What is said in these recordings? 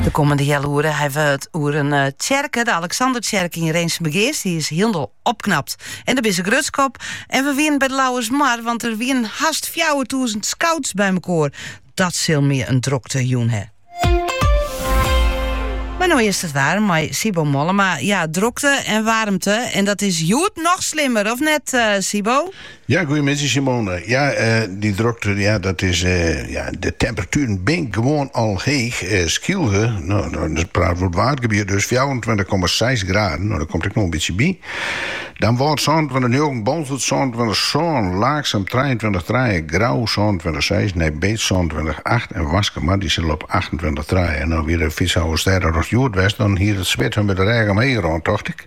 De kommende heal oere hawwe we it oer in tsjerke, de Alexandertsjerke yn Rinsumageast. Dy is hielendal opknapt. En dêr binne se grutsk op. En we wienen by de Lauwersmar, want dêr wienen hast 4000 scouts by mekoar. Dat sil my in drokte jûn hè. Mar no earst it waar, mei Sybo Mollema. Ja, drokte en waarmte. En dat is hjoed noch slimmer, of net, eh, Sybo? Ja, goeiemiddei Simone. Ja, eh, dy drokte, ja, dat is, eh, ja, de temperatueren binne gewoan al heech. Eh, Skylge, no, no, dan praten we oer it Waadgebiet dus, 24,6 graden, no, der komt ek noch in bytsje by. Damwâld 26 njoggen, Boalsert 26 sân, Laaksum 23 trije, Grou 26 seis, Nij Beets 26 acht en Waskemar dy sil op 28 trije. No wie de Fytsalvestêdetocht hjoed west, dan hie it swit men by de rêch omheech rûn, tocht ik.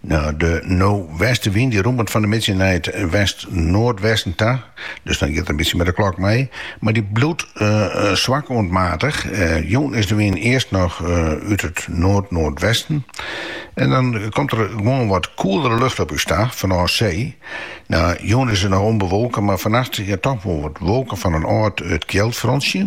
No, de westewyn dy rûmet fan de middei nei it west-noardwesten ta. Dus dan giet er in bytsje mei de klok mei. Mar dy bliuwt eh, eh, swak oant maatich. Eh, jûn is de wyn earst noch eh, út it noard-noardwesten. En dan komt der gewoan wat koelere lucht op ús ta, fanôf see. No, jûn is it noch ûnbewolke, mar fannacht ja doch wol wat wolken fan in âld kjeldfrontsje.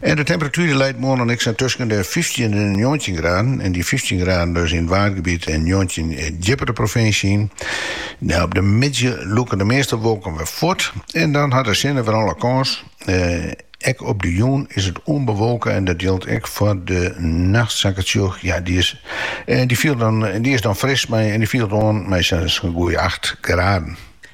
En de temperatuer dy leit moarn dan ek sa tusken de fyftjin en de njoggentjin graden. En dy fyftjin graden dus yn it Waadgebiet en njoggentjin djipper de provinsje yn. No, op de middei lûke de measte wolken wer fuort en dan hat de sinne wer alle kâns. Ek op de jûn is it ûnbewolke en dat jildt ek foar de nacht, sa ik it sjoch. Ja, dy is, dy fielt dan, dy is dan fris mei en dy fielt oan mei sa'n goeie acht graden.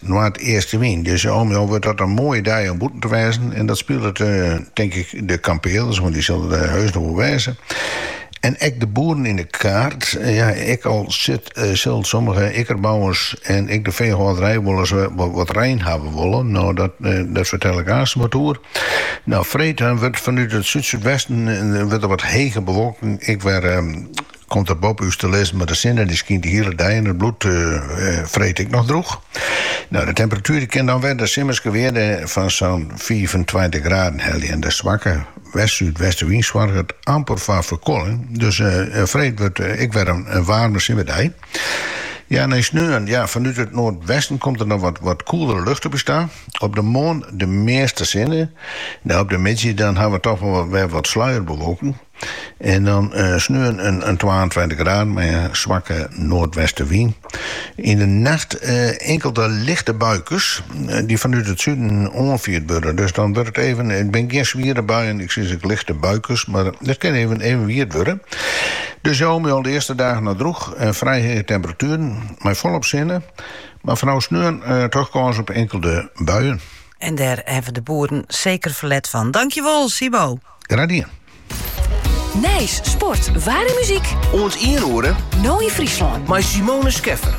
noardeastewyn. Dus moarn wurdt dat in moaie dei om bûten te wêzen. En dat spilet tink ik de kampearders, want dy sille der heus noch wol wêze. En ek de boeren yn de kaart. Ja, ek al sit, sil sommige ikkerbouwers en ek de feehâlderij wol ris wat rein hawwe wolle. No, dat, dêr fertel ik aanst wat oer. No, freed wurdt fanút it súd-súdwesten wurdt der wat hege bewolking ek wer Komt dat boppe ús te lizzen, mar de sinne dy skynt de hiele dei en it bliuwt freed ek noch droech. No, de temperatuer dy kin dan wer de simmerske wearde fan sa'n fiifentweintich graden helje en de swakke west-súdwestewyn soarget amper foar ferkoeling, dus freed wurdt ek wer in waarme simmerdei. Ja, nei sneon, ja, fanút it noardwesten komt der noch wat koelere lucht op ús ta. Op de moarn de measte sinne, mar op de middei dan hawwe we doch wol wer wat sluierbewolking. En dan sneon in twaentweintich graden mei in swakke noardwestewyn. Yn de nacht inkelde lichte buikes dy't fanút it suden oanfierd wurde. Dus dan wurdt it even, it binne gjin swiere buien, ik sis ek lichte buikes, mar it kin even wiet wurde. Dus al mei al de earste dagen noch droech en frij hege temperatueren mei folop sinne. Mar fanôf sneon doch kâns op inkelde buien. En dêr hawwe de boeren seker ferlet fan. Dankjewol, Sybo! Graden. Nijs, sport, waar en muzyk. Oant ien oere. No in Fryslân. Mei Simone Scheffer.